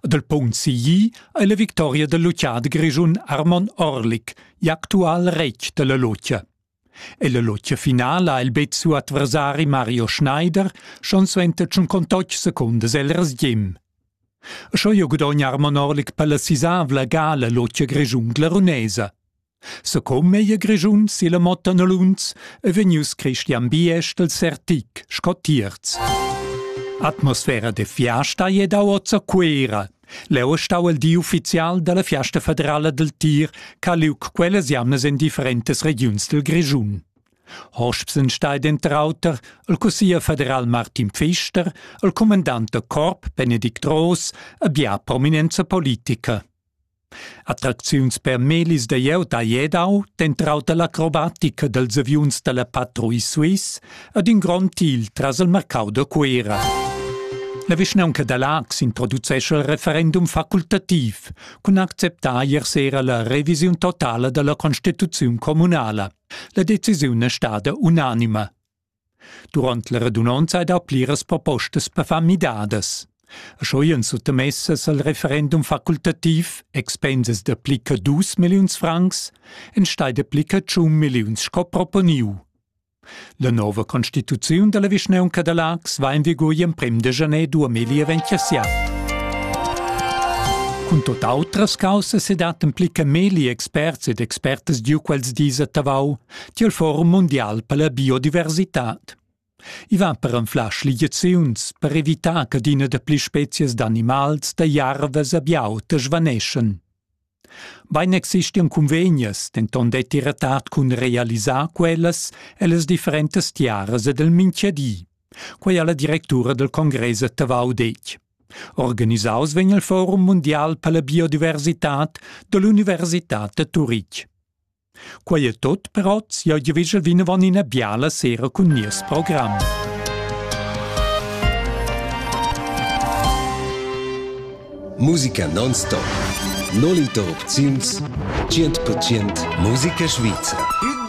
Dal punct sigli ei la victoria dal lutgiader grischun Armon Orlik igl actual retg dalla lutgia. Ella lutgia finala ha il Bezzo adversari Mario Schneider schon suenter tschun contotg secundas el resgim. Scho jo gudogna Armon Orlik per la sisavla gala lutgia grischun glarunesa. Secom ei Grischun silla motta Nolunz e vegnius Christian Biesch del Sertic sco tierz. Atmosfera de fiasta ei davoza Cuera. Leu stau el di ufficial dalla fiasta federala del tir ch'ha liug quellas jamnas in differentes regiuns del Grischun. Hospsen steht entrauter il cussier federal Martin Pfister, il comandant da corp Benedikt Roos e bia prominenza politica. Attracziuns per melis da glieud ha Jedau, dentr auter l'acrobatica dels aviuns dalla Patrouille Suisse ed in grond til tras il marcau da Cuera. La vischnaunca da Laax introducescha il referendum facultativ cun acceptar ier sera la revisiun totala dalla constituziun communala. La decisiun è stada unanima. Durant la radunonza hai dà pliras propostas per far midadas. Sco in suttamessas al referendum facultativ expensas dapli che dus milliuns francs enstai dapli che tschun milliuns sco proponiu. La nova constituziun dalla vischnaunca da Lax va in vigur emprem de janer 2027. Cun tot autras caussas e dat en pli che meli experts ed expertas giu quels dis a Tavau tiel forum mundial per la biodiversitad. I va per anflar schligiaziuns per evitar che adina dapli spezies d'animals da jarvas a biauta svaneschen. Bein existian convegnas, denton detti retat cun realisar quellas ellas differentas tiaras ed el minchiadi. Quei ha la directura del Congress a Tavau detg. Organisaus vegn il Forum mundial per la biodiversitad dell'Università de Turitg. Quei è tot per oz. Jeu giavischel vinavon ina biala sera cun nies program. Musica non-stop. Non interrupziuns 100% musica svizra.